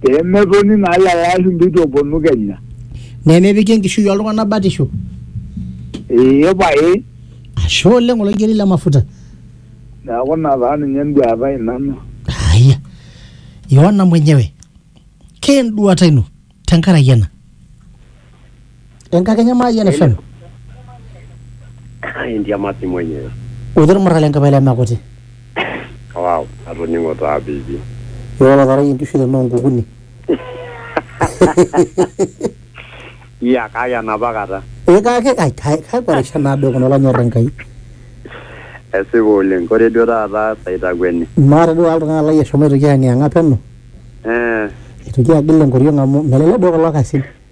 pee metoni naa lelo ashumpa itu eponu Kenya. Nemepiki enkishui oltung'ana batisho. Ee pae. Ashe oleng oloigeri le mafuta. Neaku ina taa ninye enduata ai nanu. Haya. Yohana mwenyewe. Keenduata ino tenkaraki ena. enkakenya maayian FM Entiamati mwenyewe. otii olmurra le nkipai leme kuti Wow, atoning'o taa pipi. ira olotarayie nkishu tenoo nkukuni Iya kake enapa kata. ee kake ai kai- kakwa rishat naado kuna olonyorr Enkai Esipa oleng. Ore duo taata saitakueni. maata duo oltung'ani lai eshomo aitoki ayang'iyang'a peno Eh, aitoki agil enkoriong amu melelek duo kulo kasin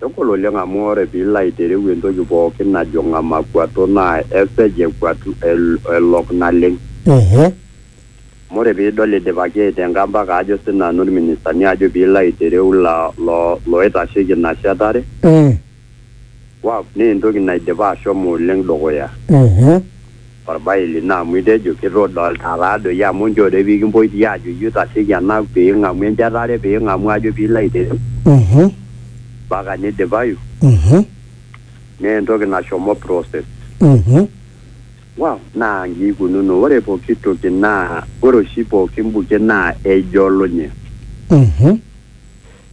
Kegol oleng amu ore pilo aitereu entoki pookin najo ngamakuato naa esej ekuatu elok naleng. Ehe. Amu ore pidol idipaki aitenga mpaka ajo sii nanu ilministani ajo pilo aitereu loitasheki ina shetare. Eeh. Waf naa entoki naidipa ashomo oleng dukuya. Ehe. Olbae lino amu itejo, Kitodolita taa doi amu njore pee kimpoi ti aajo iyie oitasheki ena pee ing'amu enjetare, pee ing'amu ajo pee ilo aiteru, mpaka nidipayu, naa entoki nashomo process. Wow! Naa inji eikununo, ore pooki toki naa ore oshi pooki buket naa ejolunye.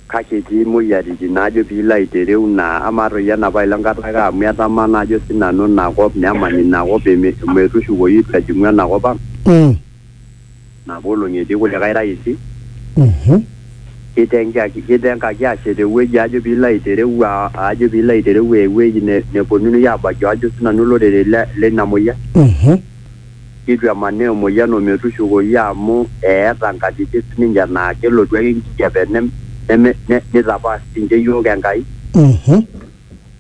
Kake etii moyiaritin naajo piilo aitereu naa amaa toi ena pae le Nkataka amu etamaa naa ajo sii nanu ina kop nemany ina kop metushukoyu eitu ejing'u ena kop ang'. Mm. Napa olong'i etii kulikae raisi Mhm. kitengaki kitengaki aashet ewueji ajo piilo aitereu aa- ajo piilo aitereu ewueji ne- neponunui aabaiki ajo sii nanu olorere le- leina moyian. Mhm. neitu emanaa emoyian o metushukoyu amu eeta nkatitin sii ninche naa kelotu ake enkijape neme neitapaash sii ninche iyiook Enkai.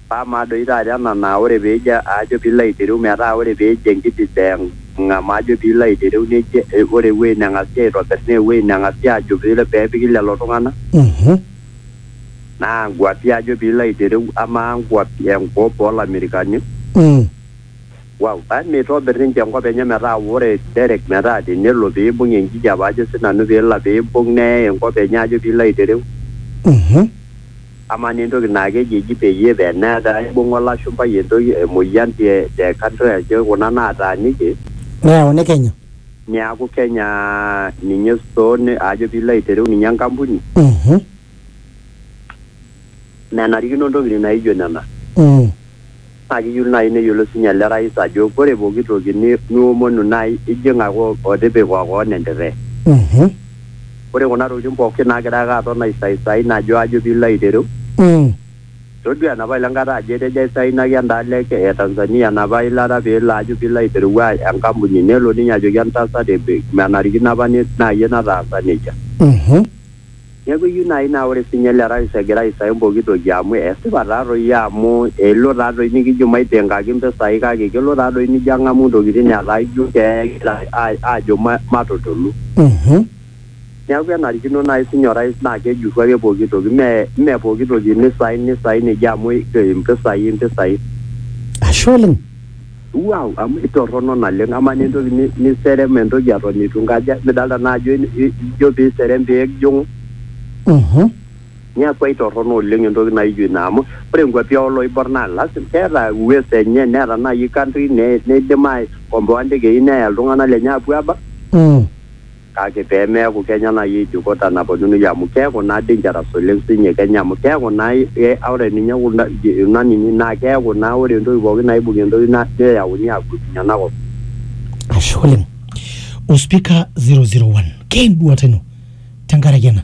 Paa amaa doi taata ena naa ore pee ijo ajo pee ilo aitereu metaa ore pee ejo enkiding'a majo pee ilo aitereu neji ore ewueji neng'asi aitobirr naa ewueji neng'asi aajo pee epiki lelo tung'anak. Naa nkuapi ajo pee ilo aitereu amaa nkuapi enkop oo lamerikani. Wow. Aa meitobir ninche enkop enye metaa ore Derek metaa tenelo pee eibung enkijape ajo sii nanu pee ilo pee eibung neyai enkop enye ajo pee ilo aitereu. Uhum. Amaa naa entoki naa keji eji peyie pee netaa eibunga olashumpai entoki emoyian te te country ajo kuna naataaniki. Neyauni Kenya. Niaku Kenya ninye store ajo pee ilo aitereu ninye enkampuni. Uhum. menarikino ntokitin naijo nena. Mm. Naa kiyieu naaji neyiolou sii ninye ele rais ajo ore pooki toki ni, niomonu naa ijing ake otipika koon entirre. Mhm. Ore kuna tokitin pooki naagira ake aton aisaisai najo ajo piilo aitereu. Mm. Todua enapa ile nkata ajo etejo aisainaki endaalo e e Tanzania enapa ilata piilo ajo piilo aitereu enkampuni nelo ninye ajoki entasat menarikino apa ni, naa iyie nataasa nejia. Mhm. Neaku eyieu naaji naa ore sii ninye ele rais egira aisahau pooki toki amu esipa taa doi amu elo taa doi nikijo maipingaki mpisai kake kelo taa doi nijo ang'amu intokitin etaa ijo kegira aajo matutulu. Neaku enarikino naaji sii ninye orais naa kejurru ake pooki toki mme pooki toki neisain neisain eji amu impisai impisai. Ashe oleng. Wow, amu itorrono naleng amaa naa entoki ni- niserem entoki eton itu nkaja midalta naa ajo in- i- ijo piserem pijing'u Mhm. niaku aitorrono oleng entoki naijo ina amu ore nkuapi oloibor naa lazima keeta uwezo enye neeta naaji country ne- neidim aikomboa ndekei neya iltung'anak lenye apuo abak Mm. Kake pee meaku kenya naaji eidikota naponunui amu keaku naa dangerous oleng siinye kenya amu keaku naa ore ninye kuna nini naa keaku naa ore entoki pooki naibung entoki neyauni aagutunye ena kop. Ashe oleng. Ospika 001, keenduata ino tenkaraki ena?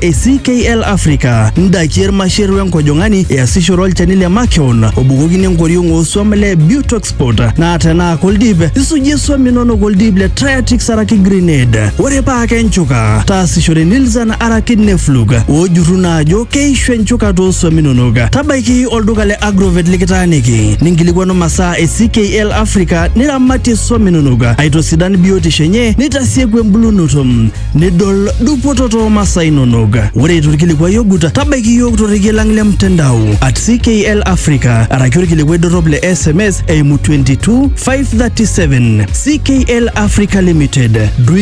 e CKL Africa, ndaiki ermasher wenkojong'ani easishore olchani le makeon obukokini enkoriong oosuam le Butoxport naa tenaa koldip isujie suam inonok oldip le Triatix araki Grenade. Ore paa kenchuka, taasishore Nilzan araki Neflug oojurru naa ajo keishu enchuka toosuam inonok. Tabaiki olduka le Agrovet likitaaniki ninkilikwanu masaa e CKL Africa niramatie suam inonok aitosidan biotisho enye nitasieku embulunoto. nidol dupoto too masaa inonok. Ore eitu ilkilikuai ogut, tabaiki iyiook torrekie lang le mtandao at CKL Africa araki olkilikuai dorrop le SMS eimu 22537 CKL Africa Limited.